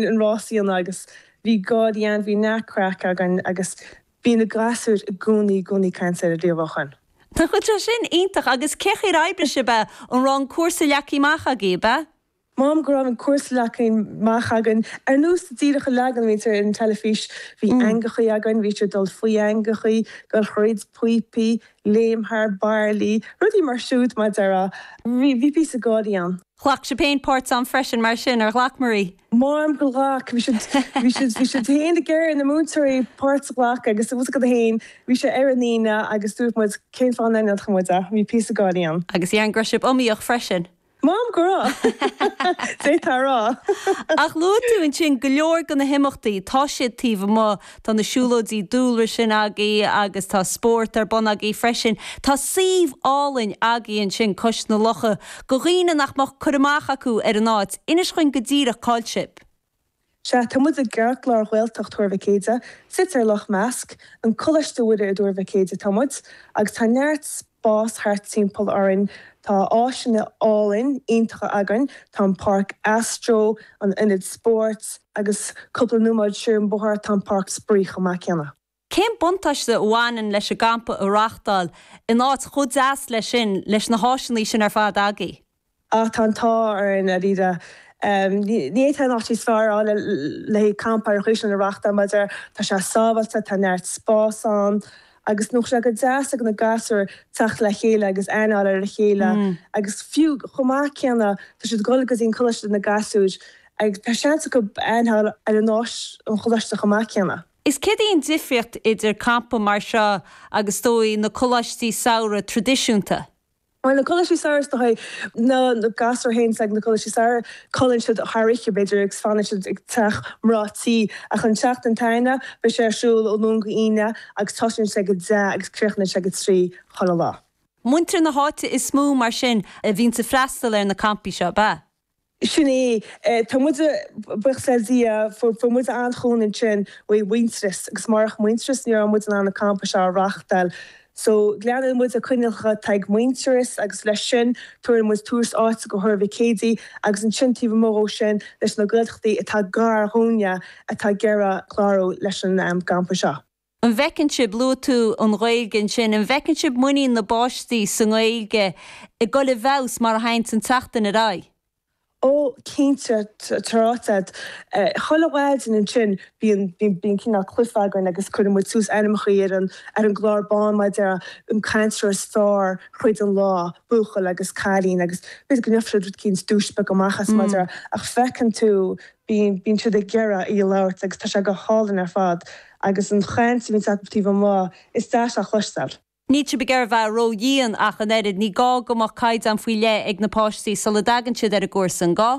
an rás fhiáin agus bhí gáirí ann, bhí neart craic againn agus bhí na gasúir i gcónaí i gcónaí ag caint ar an rialúcháin. Tá sin iontach. Agus cén chaoi ar oibrigh sibh é? An raibh an cúrsa leagtha amach agaibh? M'anam go raibh an cúrsa leagtha amach againn. Ar nós díreach an leagan a bhíonn ar an teilifís. Bhí eangachaí againn, bhí siad ag dul faoi eangachaí, dul thríd píopaí, léim thar bairillí, rudaí mar siúd mar a déarfá. Bhí píosa gáirí ann. Ghlac sibh féin páirt ann freisin, mar sin, ar ghlac Marie? M'anam gur ghlac. Bhí siad, bhí siad, bhí siad féin ag iarraidh na múinteoirí páirt a ghlacadh agus os a gcoda féin bhí sé ar an Aoine agus dúirt muid cén fáth nach ndéanfadh muid é. Bhí píosa gáirí ann. Agus déarfainn go raibh sibh iomaíoch freisin? M'anam go raibh, d'fhéadfá a rá. Ach luaigh tú ansin go leor de na himeachtaí, tá siad taobh amuigh Tá na siúlóidí dúlra sin agaibh agus tá spórt ar bun agaibh freisin. Tá suíomh álainn agaibh ansin cois na locha go dhaoine nach mbeadh cur amach acu ar an áit. Inis dhúinn go díreach cáil sibh. Sea, tá muid i gceartlár Ghaeltacht Thuar Mhic Éadaigh, suite ar Loch Measc. An Coláiste Mhuire i dTuar Mhic Éadaigh atá muid agus tá neart. spás thart timpeall orainn. Tá áiseanna álainn iontacha againn, tá an páirc astro, an ionad spóirt agus cúpla nóiméad siar an bóthar tá an páirc spraoi chomh maith céanna. Cén buntáiste a bhaineann leis an gcampa a reáchtáil in áit chomh deas leis sin leis na háiseanna sin ar fad agaibh? Ach tá an t-ádh orainn dáiríre. Ní fhéadfá áit níos fearr a fháil le haghaidh campa ar nós sin a reáchtáil mar a déarfá tá sé sábháilte, tá neart spás ann agus nó sé go deas ag na gasúir teacht le chéile agus aithne a fháil ar a chéile agus fiú chomh maith céanna tá siad ag dul go dtí an coláiste na gasúir agus tá seans acu aithne a fháil ar an áit sa choláiste chomh maith céanna. Is céard é an difríocht idir campa mar seo agus is dóigh na coláistí samhraidh tradisiúnta? Mar na Coláistí Samhraidh is dóigh, na gasúir a bhíonns ag na Coláistí Samhraidh, codlaíonn siad thar oíche b'fhéidir agus fanann siad ag teach mná tí. Ach an tseachtain atá againne, beidh sé ar siúl ó Luan go Aoine agus tosaíonn sé ag a deich agus críochnaíonn sé ag a trí chuile lá. Muintir na háite is mó mar sin a bhíonns ag freastal ar na campaí seo, ab ea? Sin é. Tá muid, buíochas le Dia, fuair muid an-chúnamh ansin uaidh Mhuintearas agus murach Muintearas ní raibh muid in ann na campaí seo a reáchtáil. So, leanann muid na coinníollacha atá ag Muintearas agus leis sin tabharann muid tús áite go Thuar Mhic Éadaigh agus ansin taobh amuigh ó sin leis na Gaeltachtaí atá gar dhúinne atá ag iarraidh clárú leis an gcampa seo. An bhfeiceann sibh, luaigh tú an Ghaeilge ansin, an bhfeiceann sibh muinín na bpáistí sa nGaeilge ag dul i bhfeabhas mar a thagann an tseachtain ar aghaidh? Ó, cinnte, tá ráite agat. Chuile mhaidin ansin bíonn cineál cluiche againn agus cuireann muid suas ainmneacha ar an gclár bán mar a déarfá, an cainteoir is fearr thríd an lá, buachaill agus cailín agus b'fhéidir go ndéanfadh siad rud éicint, duais bheag amach as mar a déarfá, ach feiceann tú. Bíonn, bíonn siad ag iarraidh í a labhairt agus tá sé go hálainn ar fad agus an chaint a bhíonns acub taobh amuigh is deas a chloisteáil. Níl sibh ag iarraidh a bheith ródhian ach an oiread, ní gá go mbeadh caighdeán faoi leith ag na páistí sula dtagann siad ar an gcúrsa, an gá?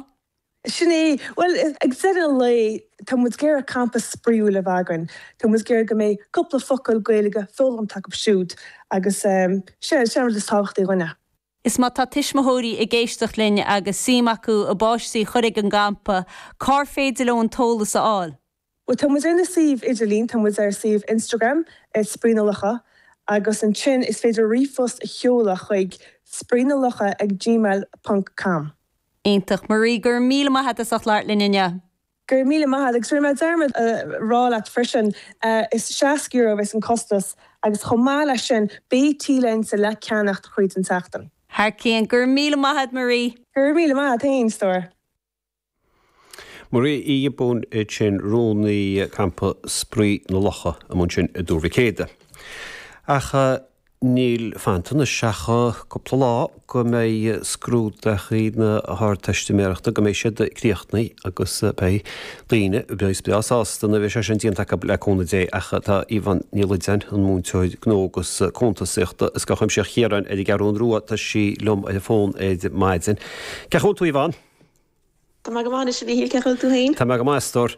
Sin é, bhuel ag deireadh an lae tá muid ag iarraidh campa spraíúil a bheith againn, tá muid ag iarraidh go mbeidh cúpla focal Gaeilge foghlamtha acub siúd agus eh, sin, sin an rud is tábhachtaí dhúinn eh. Is má tá tuismitheoirí ag éisteacht linn agus suim acu a bpáistí a chur ag an gcampa, cár féidir leo an t-eolas a fháil? Bhuel, tá muid ar na suíomh idirlín, tá muid ar suíomh Instagram @spraoinelocha agus ansin is féidir ríomhphost a sheoladh chuig spraoinelocha@gmail.com. Iontach. Marie, go raibh míle maith a'd as ucht labhairt linn inniu. Go raibh míle maith a'd. Agus rinne mé dearmad a rá leat freisin, is €60 a bheas an costas agus chomh maith leis sin beidh T-léinte le ceannacht chuile sheachtain. Thar cionn. Go raibh míle maith a'd, Marie. Go raibh míle maith a'd féin, a stór. Marie Uí Ghiobúin ansin, rúnaí Campa Spraoi na Locha a bheas ar bun ansin i dTuar Mhic Éadaigh. Ach. Níl fanta anois ach cúpla lá go mbeidh scrúduithe na hArdteistiméireachta, go mbeidh siad críochnaithe agus beidh daoine breá sásta nuair a bheidh sé sin déanta acub, le cúnamh Dé, ach tá Yvonne Ní Loideáin, an múinteoir gnó agus cuntasaíochta i Scoil Chuimsitheach Chiaráin ar an gCeathrún Rua, tá sí liom ar an bhfón ar maidin. Cén chaoi a bhfuil tú Yvonne? Tá mé go maith anois, a Mhíchíl, cén chaoi a bhfuil tú féin? Tá mé go maith, a stór.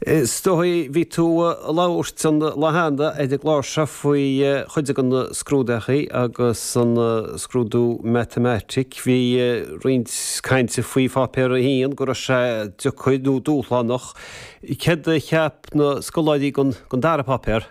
Is dóigh bhí tú ag labhairt an lá cheana ar an gclár seo faoi chuid de na scrúduithe agus an scrúdú Matamaitic. Bhí roinnt cainte faoi Pháipéar a hAon, go raibh sé deacair nó dúshlánach. Céard a cheap na scoláirí dhen dara páipéar?